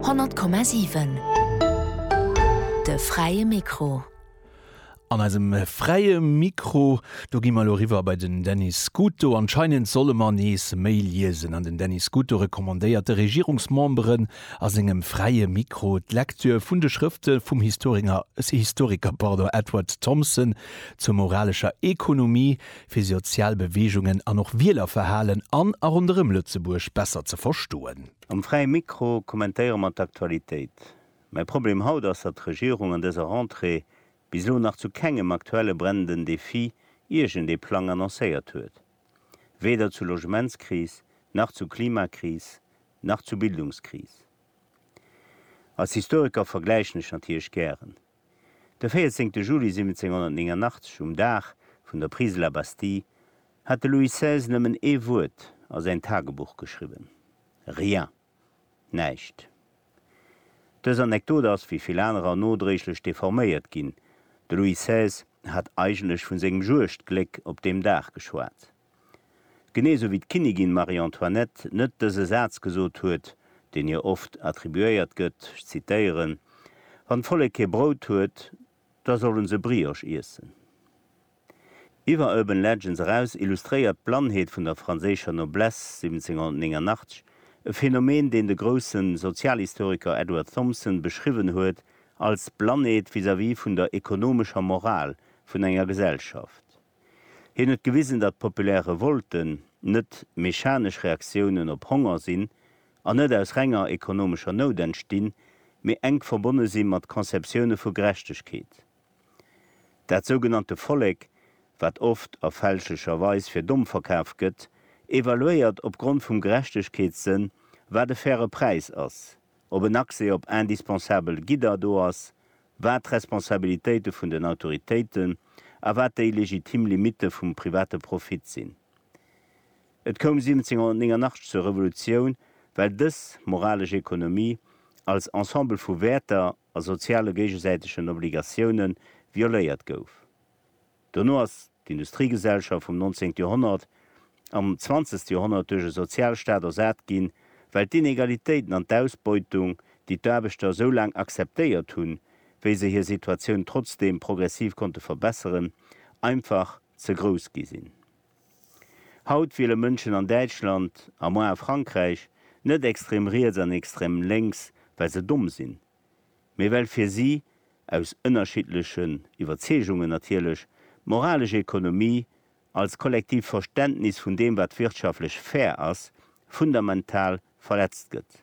100,7 De fräie Mikro. An eisem fräie Mikro, do gi mer elo eriwwer bei den Denis Scuto. Anscheinend solle mer nees méi liesen an den Denis Scuto recommandéiert de Regierungsmemberen a sengem fräie Mikro d'Lektür vun de Schrëfte vum Historinger, Historiker, pardon, Edward Thompson zur moralescher Ekonomie, fir sozial Beweegungen an och Wielerverhalen an a ronderëm Lëtzebuerg besser ze verstoen. Am Fräie Mikro kommentéiere mer d'Aktualitéit. Mäi Problem haut ass, datt d'Regierung an dëser Rentrée bis elo nach zu kengem aktuelle brennenden Defi iergend ee Plang annoncéiert huet. Weder zur Logementskris, nach zur Klimakris, nach zur Bildungskris. Als Historiker vergläichen ech natierlech gären. De 14 Juli 1789, um Dag vun der Prise de la Bastille, hat de Louis xvi. Nëmmen ee Wuert a säin Tagebuch geschriwwen, Rien! Näischt! Dës Anekdot ass, wéi vill anerer, nodréiglech deforméiert ginn. De Louis xvi. Hat eigentlech vun sengem Juegdgléck op deem Dag geschwat. Genee esou wéi d'Kinnigin Marie-Antoinette net dëse Saz gesot huet, deen hir oft attribuéiert gëtt, ech zitéieren, Wann d'Vollek kee Brout huet, da sollen se Brioche iessen. Iwwer Urban Legends eraus illustréiert d'Blannheet vun der franséischer Noblesse 1789 e Phänomen, deen de grousse Sozialhistoriker Edward Thompson beschriwwen huet als Blannheet vis-à-vis vun der ekonomescher Moral vun enger Gesellschaft. Hien huet gewisen, datt populär Revolten net mechanesch Reaktiounen op Honger sinn an net aus renger ekonomescher Nout entstinn, mee enk verbonne si mat Conceptioune vu Gerechtegkeet. Dat sougenannte Vollek, wat oft a fälschlecher Weis fir domm verkaf gëtt, evaluéiert opgrond vum Gerechtegkeetssënn, wat e faire Präis ass, ob en Accès op indispensabel Gidder do ass wat d'Responsabilitéite vun den Autoritéiten a wat déi legitim Limitte vum private Profit sinn. Et koum 1789 zur Revolutioun, well dës moralesch Ekonomie als Ensemble vu Wäerter a soziale géigesäitegen Obligatiounen violéiert gouf. Dono ass d'Industriegesellschaft vum nonzéngt Joerhonnert am zwanzegste Joerhonnert duerch e Sozialstaat ersat ginn, well d'Inegalitéiten an d'Ausbeutung, déi d'Aarbechter esou laang akzeptéiert hunn, wéi se hir Situatioun trotzdeem progressiv konnte verbesseren, einfach ze grouss gi sinn. Haut wiele Mënschen an Däitschland, a moar a Frankräich, net extrem riets an extrem lénks, well se domm sinn. mee well fir si, aus ënnerschiddlechen Iwwerzeegungen natierlech, d'moralesch Ekonomie als kollektiivt Verständnis vun deem wat wirtschaftlech fair ass, fundamental verletzt gëtt.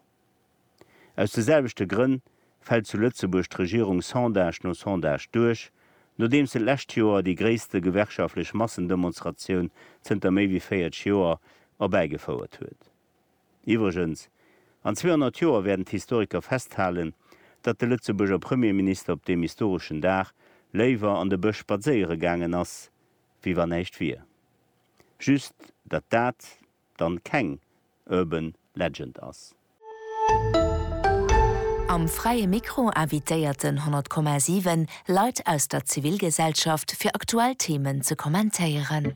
Aus de selwechte Grënn fält zu Lëtzebuerg d'Regierung Sondage no Sondage duerch, nodeems se d'lescht Joer déi gréisste gewerkschaftlech Massendemonstratioun zënter méi wéi 40 Joer erbäigefouert huet. Iwwregens, an 200 Joer wäerten d'Historiker festhalen, datt de Lëtzebuerger Premierminister op deem historeschen Dag léiwer an de Bësch spadséiere gaangen ass, wéi wa näischt wier. Just, datt dat dann keng Urban Legend ass. Am Fräie Mikro invitéierten 100,7 Leit aus der Zivilgesellschaft fir aktuell Themen ze kommentéieren.